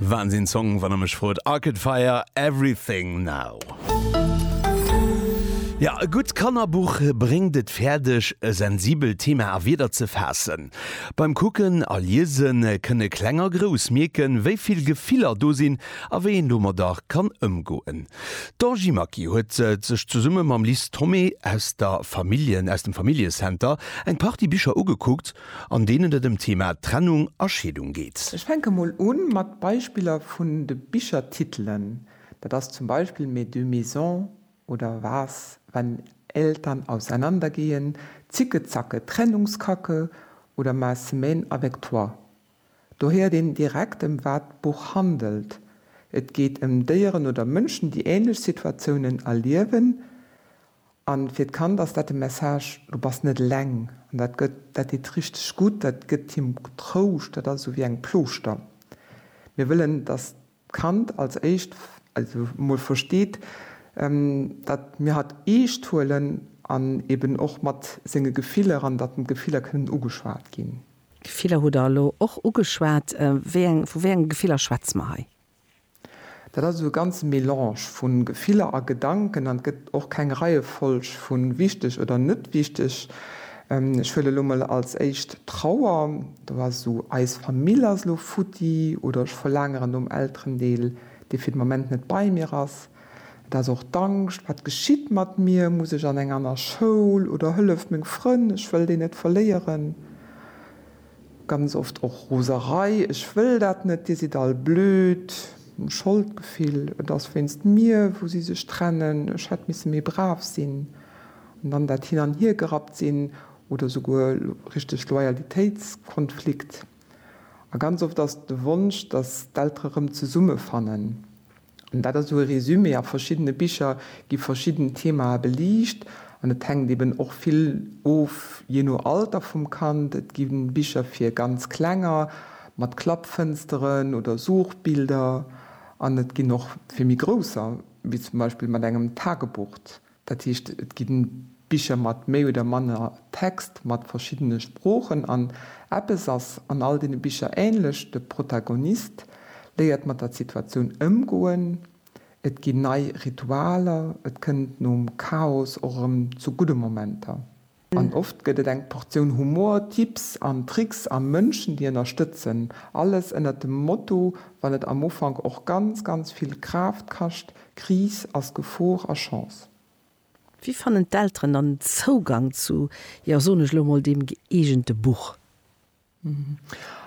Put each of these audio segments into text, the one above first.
Wahnsinn Song wann der mech frot, Arcade Fire, Everything Now. Ja e gutt Kannerbuch bréngt et fäerdeg e sensibelt Thema a Wierder ze faassen. Beim Kucken a Liesen kënne Kleng a Grouss mierken, wéi vill Gefiller do sinn a wéi een domadder kann ëmgoen. D'Angie Maki huet sech zesumme mam Lis Thomé aus der Familljen aus dem Familljecenter eng Partie Bicher ugekuckt an deenen et ëm d'Thema Trennung a Scheedung geet. Ech fänke mol u mat Beispiller vun de Bichertitelen, dat ass zum Beispill Mes deux maisons oder Was, wenn Eltern auseinandergehen, Zickezacke, Trennungskacke oder Ma semaine avec toi. Do héiert een direkt, ëm wat d'Buch handelt, Et geet ëm Déieren oder Mënschen, déi änlech Situatiounen erliewen An fir d'Kand ass dat de Message, du bass net eleng. An dat gëtt, dat deet richteg gutt, dat gëtt him Trouscht, dat ass esou wéi eng Plooschter. Mir wëllen, dass d'Kand als éischt, also emol versteet, dat mir hatt eescht huelen an eben och mat senge Gefiller an dat d'Gefiller kënnen ugeschwat ginn. Gefiller hutt Der elo och ugeschwat. Wéi eng, vu wéi enge Gefiller schwätze mer hei? Dat ass esou e ganze Melange vu Gefiller a Gedanken an et gëtt och keng Reiefolg vu wichteg oder net wichteg. Ech huelen elo mol als éischt d'Trauer. Do ass esou, eis Famill ass elo futti oder ech verlaangeren nom Elterendeel, dee fir de Moment net bei mir ass. Et ass och d'Angscht, wat geschitt mat mir, muss ech an eng aner Schoul oder hëlleft meng Frënn, ech wëll déi net verléieren. Ganz oft och Roserei, Ech wëll dat net, Dir sidd all blöd, Scholdgefill, Et ass wéinst mir, wou si sech trennen, Ech hätt misse méi brav sinn, an dann dat Hin an Hier gerappt sinn oder souguer richteg Loyalitéitskonflikt. A ganz oft ass et de Wonsch, dass d'Eltere rëm zesummefannen. Dat ass esou e Résumé. A verschiddene Bicher gi verschidden Themae beliicht an et hänkt eeben och vill of jee no Alter vum Kand. Et gi Bicher fir ganz Klenger mat Klappfënsteren oder Suchbilder an et ginn och fir méi Grousser, wéi zum Beispill mat engem Tagebucht. Dat heescht, et ginn Bicher mat méi oder manner Text mat verschiddene Sproochen an eppes ass an all deene Bicher ähnlech, de Protagonist léiert mat der Situatioun ëmgoen, et ginn nei Ritualer, et kënnt nom Chaos och erëm zu gudde Momenter. An oft gëtt et eng Portioun Humor, Tipps an Tricks a Mënschen, déi ënnerstëtzen. Alles ënnert dem Motto, wann et am Ufank och ganz, ganz vill Kraaft kascht, Kris ass Gefor a Chance. Wéi fannen d'Elteren dann Zougang zu, jo soen ech elo mol, deem gëeegente Buch?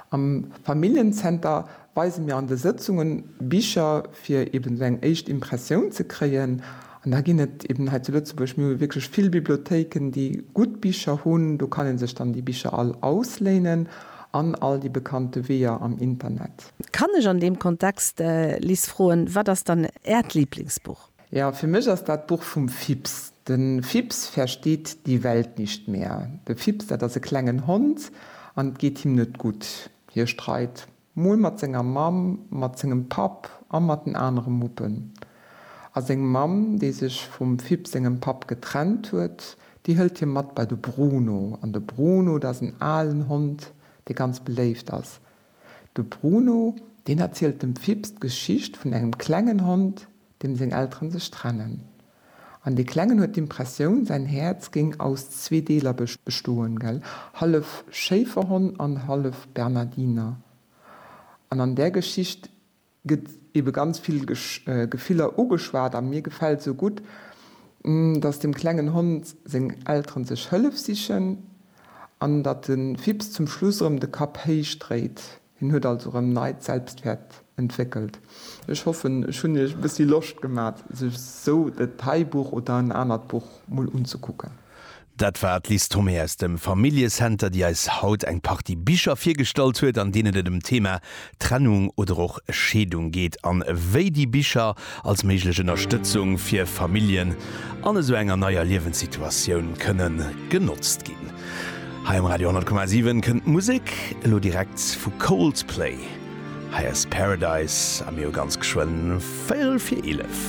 Am Familljenzenter weise mir an de Sëtzungen Bicher, fir eben esou eng éischt Impressioun ze kréien. An da ginn et eben hei zu Lëtzebuerg, mir hu wierklech vill Bibliothéiken, déi gutt Bicher hunn. Do kann ee sech dann déi Bicher all ausléinen an all déi bekannte Weeër am Internet. Kann ech an deem Kontext, Lis, froen, Wat ass dann Äert Liblingsbuch? Jo, fir mech ass dat d'Buch vum Fips. De Fips versteht die Welt nicht mehr. De Fips, dat ass e klengen Hond an et geet him net gutt. Hie streit mol mat senger Mamm, mat sengem Papp a mat den anere Muppen. A seng Mamm, déi sech vum Fips sengem Papp getrennt huet, déi hëlt hie mat bei de Bruno. An de Bruno, dat ass en alen Hond, dee ganz beléift ass. De Bruno, deen erzielt dem Fips d'Geschicht vun engem klengen Hond, deem seng Elteren sech trennen, an dee Klengen huet d'Impressioun, säin Häerz géing aus zwee Deeler bestoen, hallef Schéiferhonn an hallef Bernardiner. An an där Geschicht gëtt ebe ganz vill Gefiller ugeschwat, a mir gefält esou gutt, datt dem klengen Hond seng Elteren sech Hëllef sichen, an datt de Fips zum Schluss erëm de Kapp héich dréit. Hien huet also rem neit Selbstwert entwéckelt. Ech hoffen ech hunn iech e bëssi Loscht gemat sech sou et hei Buch oder en anert Buch mol unzekucken. Dat war d'Liz Thomé aus dem Familljecenter, déi eis haut eng Partie Bicher virgestallt huet, an deenen et ëm d'Thema Trennung oder och Scheedung geet, an wéi déi Bicher als méiglech Ënnerstëtzung fir Familljen an esou enger neier Liewenssituatioun kënnen genotzt ginn. Hei um Radio 10,7 kënnt d'Musek elo direkt vu Coldplay. Hei ass Paradise a mir hu ganz geschwënn véierel fir eelef.